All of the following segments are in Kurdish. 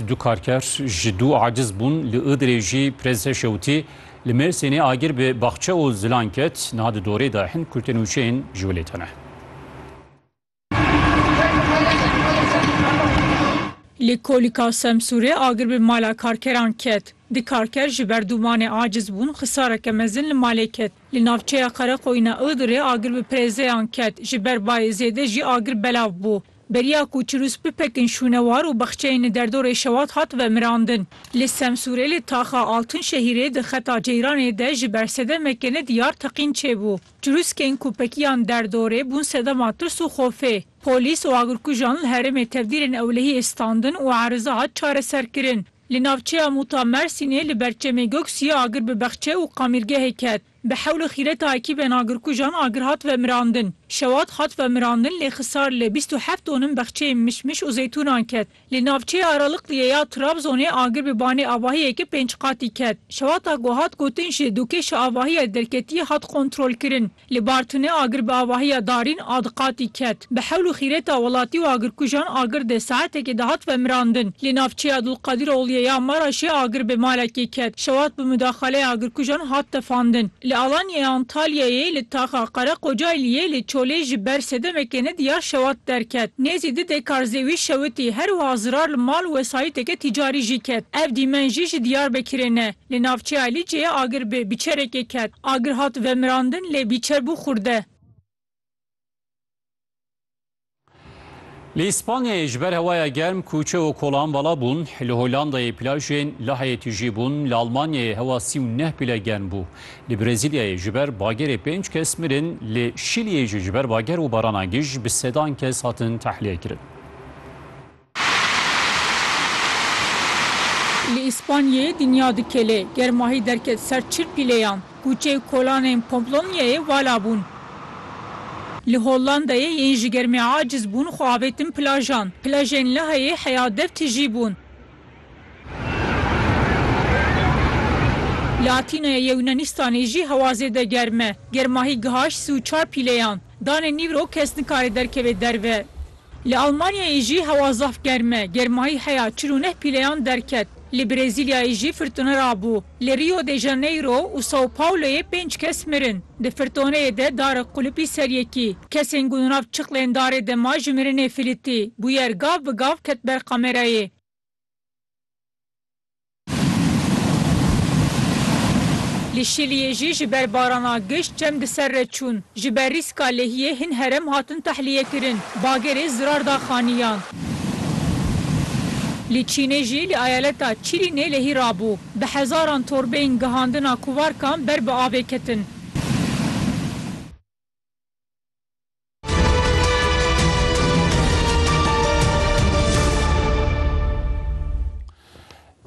Du karker ji dû aciz bûn. Li Iğdırê jî Prensê Şewtî li Mêrsînê agir bi baxçe û zilan ket. Niha di dorê de hin kurtên û çiyên ji wê lê tene. Li Kolîka Semsûrê agir bi mala karkeran ket. Du karker ji ber dûmanê aciz bûn, xisareke mezin li malê ket. Li navçeya Qereqoyîna Iğdırê agir bi prêzeyan ket. Ji ber bayê zêde jî agir belav bû. Beriya ku Çirûs Pipek'in şûnewar û baxçeyên li derdorê Şewat hat vemirandin. Li Semsûrê li taxa Altun Şehîrê di xeta ceyranê de ji ber sedemeke ne diyar teqîn çêbû. Çirûskên ku pekiyan derdorê bûn sedema tirs û xofê. Polîs û agirkujan li herêmê tevdîrên ewlehiyê standin û eriza hat çareserkirin. Li navçeya Mûta Mersînê li ber çemê Göksiyê agir bi baxçe û qamîrgehê ket. Bi hewl û xîreta ekîbên agirkujan agir hat vemirandin. Şewat hat vemirandin lê xisar li bîst û heft tonin bexçeyên mişmiş û zeytûnan ket. Li navçeya Aralıklı'yê ya Trabzonê agir bi banê avahiyeke pênc qatî ket. Şewata ku hat gotin jî du kêşa avahiyê derketiyê hat kontrolkirin. Li Bartın'ê agir bi avahiya darîn a di qatî ket. Bi hewl û xîreta welatî û agirkujan agir dê saetekê de hat vemirandin. Li navçeya Dulqadîrogliyê ya Maraşê agir bi malekê ket. Şewat bi mudaxaleyê agirkujan hat tefandin. Li Alanyayê, Antalyayê, li taxa Qereqocayliyê, li Çolê ji ber sê demekê nediyar şewat derket. Nêzî du dekarzê wî şewitî. Her wiha zirar li mal û wesayîteke tîcarî jî ket. Ev dîmen jî ji Diyarbekirê ne. Li navçeya Lîceyê agir bi bîçerekê ket. Agir hat vemirandin lê bîçer bû xurde. Li Îspanyayê ji ber hewaya germ kûçe û kolan vala bûn, li Hollandayê plajên Laheyê tijî bûn, li Almanyayê hewa sî û neh pile germ bû. Li Brezîlyayê ji ber bagerê pênc kes mirin, li Şîliyê jî ji ber bager û barana gij bi sedan kes hatin tehliyekirn. Li Îspanyayê dinya dikele, germahî derket ser çil pîleyan, kûçe û kolanên Pomplonyayê vala bûn. Li Hollandayê yên ji germê aciz bûn xwe avêtin plajan, plajên Lehayê heya dev tijî bûn. Li Atînayê Yewnanistan jî hewa zêde germ e, germahî gihaşt sî û çar pîleyan. Danê nîvro kes nikare derkeve derve. Li Almanyayê jî hewa zaf germ e, germahî heya çil û neh pîleyan derket. Li Brezîlyayê jî firtone rabû. Li Rio de Janeiro û Sao Pauloyê pênc kes mirin. Di firtoneyê de darek qulipî ser yekî. Kesên ku di nav çiqlên darê de ma ji mirinê filîtî. Bûyer gav bi gav ket ber kamerayê. Li Şiliyê jî ji ber barana giş çem di ser re çûn. Ji ber rîska lehiyê hin herem hatin tehlîyekirin. Bagerê zirar da xaniyan. Li Çînê jî li eyaleta Çîlînê lehî rabû. Bi hezaran torbeyên gihandina kuvarkan ber bi avê ketin.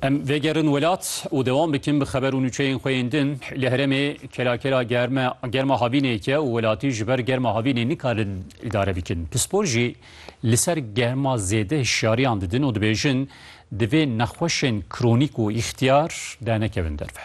Em vegerin welat û dewan bikin bi xeber û nûçeyên xwe yên din li herêmê kelakela germe germa havînê ye û welatî ji ber germa havînê nikarin îdare bikin. Pispor jî li ser germa zêde hişyariyan didin û dibêjin divê nexweşên kronîk û îxtiyar dernekevin derve.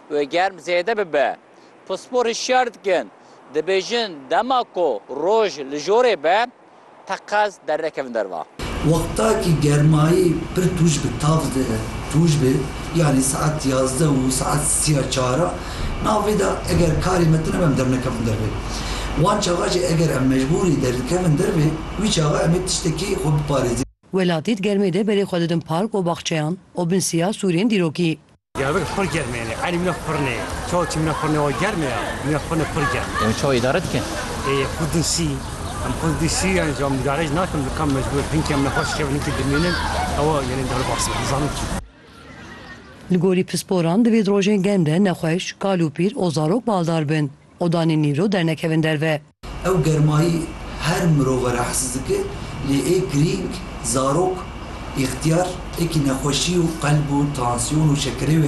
Wê germ zêde bibe. Pisporî şiyar dikin. Dibêjin dema ku roj li jorê be teqez dernekevin derva. Wexta ki germayî pir tûj bi tav de tûj be yanî saet yazdeh û saet sî ya çar a navê de eger karê me tune be em dernekevin dervê. Wan çaxa jî eger em mecbûrî derikevin dervê wî çaxa em ê tiştekî xwe biparêzin. Welatî di germê de berê xwe didin park û baxçeyan û bin sîya sûrên dîrokî. Diyarbekir pir germ e yani elî min e pirn e. Çawa çi min e pirn e wa germ e ya. Min e pirn e pir germ e. Em çawa îdare dikin? Ê xwe din sî. Em xwe din sî yani ji mudare jî nakin dikan mecbûr hinkê min e xweş kevin hinkê dimînin ew e yani dewle baxsê dizanin kî. Li gorî pisporan divê di rojên germ de nexweş, kal û pîr û zarok baldar bin. û danê nîro dernekevin derve. Ew germayî her mirov e rehes dike lê ê girîng zarok, îxtiyar, ekî nexweşî û qelb û tansîyon û şekerê